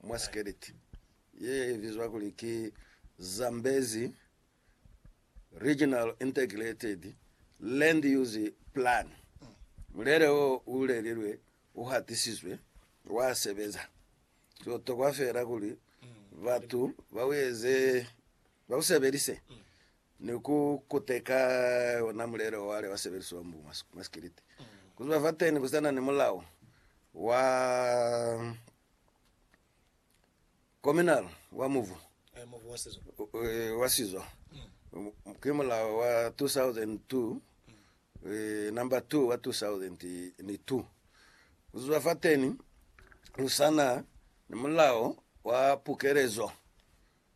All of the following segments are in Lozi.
mwa Sikeleti ye bizwa kuli ki Zambezi Regional Integrated Land Use Plan. Mulele wo u lelilwe u hatisizwe, wa sebeza. Ki butokwa feela kuli batu ba u eze, ba u sebelise ni ku kuteka ona mulele o wale wa sebelisiwa mbu mwa Sikeleti. Ku ziba fateni ku sa na ni mulao wa Kominal wa mubu wa sizo ki mulao wa 2002 number 2 wa 2002 kuzwa fateni kusana ni mulao wa pukelezo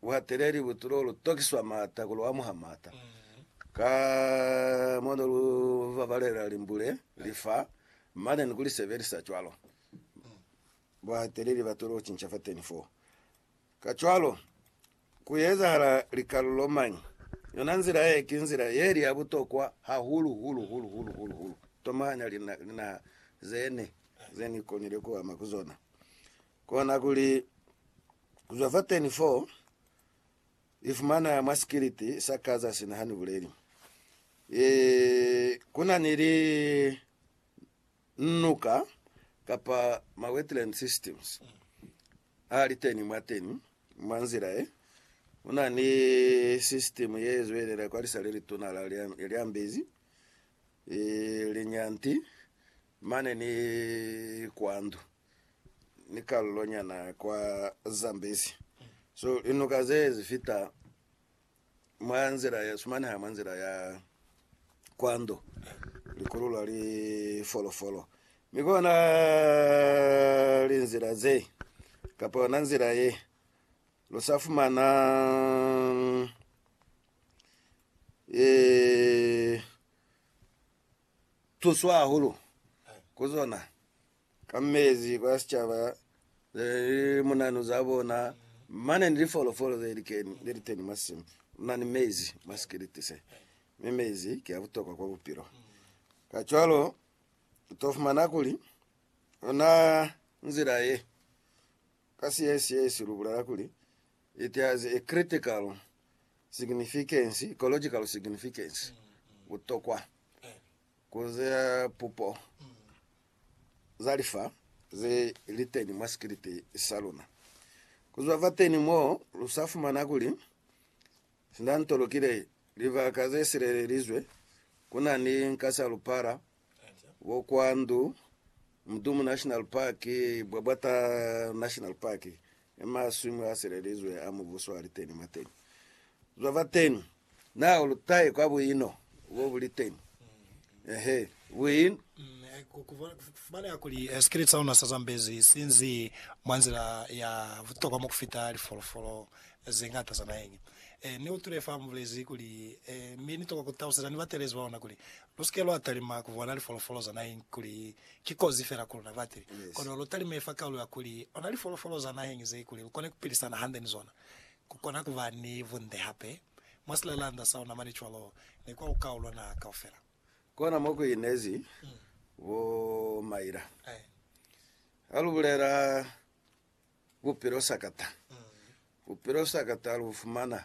Buhateleli bu tulo lu tokiswa maata ku lu amuha maata. Ka mo ne lu babalela limbule, li fa, mane ni ku li sebelisa cwalo, buhateleli ba tulo cinca fateni foo. Kacwalo, ku ezahala likalulo mañi? Yona nzila ye ki nzila ye li ya butokwa hahulu, hulu, hulu, hulu, hulu, hulu. Tomahanya linaha ze ne, ze ni konile ku ama ku zona. Kona kuli, ku zwa fateni foo, i fumana mwa sikiliti sa ka za sina ha ni buleli. E, ku na ni li nuka kapa ma wetland systems a li teni mwa teni. Mwa nzila ye, ku na ni system ye zwelela kwa lisa le lituna la Lyambezi, e, Linyanti, mane ni kwa ndu. ni kalulo nyana kwa Zambezi. So linuka ze zi fita mwa nzila ya sumaneha mwa nzila ya kwando likululwa li folofolo mi kona linzila ze kapa yona nzila ye lu sa fumana ee tuswa hahulu ku zona. ka mezi kwa sicaba ze li munanu za bona, mane ni lifolofolo ze likeni, ze liteni mwa simu muna ni mezi mwa sikiliti se, mi mezi ki a butokwa kwa bupilo. Kacwalo, u to fumana kuli, ona nzila ye, ka Siesiesi lu bulela kuli, it has a critical significance, ecological significance, butokwa. Ku ze pupo za lifa ze li teni mwa sikiliti sa luna. Ku zwa fateni mo, lu sa fumana kuli sina nto lukile libaka ze silelelizwe, ku na ni nkasalupala, bokwandu, Mdumu National Park, Bwabwata National Park, i maswimu a selelizwe a mubuso a li teni mwa teni. Zwa fa teni, na u lutahe kwa buino bo bu li teni? Eehe. Buin. Fumaneha kuli sikili sa luna sa Zambezi si nzi mwa nzila ya butokwa mo ku fita lifolofolo ze ñata za naheñi. Ni utwile fa mubulezi kuli, Mi ni tokwa ku taluseza ni batelezi ba luna kuli, Lu si ke lwa talima ku bona lifolofolo za naheng kuli ki kozi fela ku luna batili, kono lu talime fa kaulo ya kuli ona lifolofolo za naheng ze kuli lu kone ku pilisana hande ni zona, ku kona ku ba ni bunde hape mwa silelanda sa ona mane cwalo ni kwa lukau lwa naha kaufela. Kona mo ku inezi bo Myra. Ha lu bulela bupilo sakata, bupilo sakata lu fumana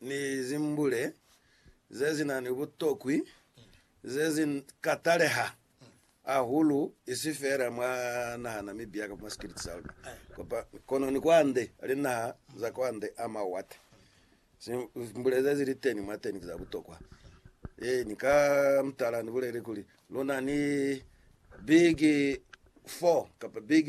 ni zimbule ze si na ni butokwi ze si ka taleha hahulu, isi feela mwa naha na Namibia kamba mwa sikiliti sa luna, kono ni kwande linaha za kwande a mawate. Zimbule ze zili teni mwateni ki za butokwa. Ee, ni ka mutala ni bulele kuli lu na ni big four kamba big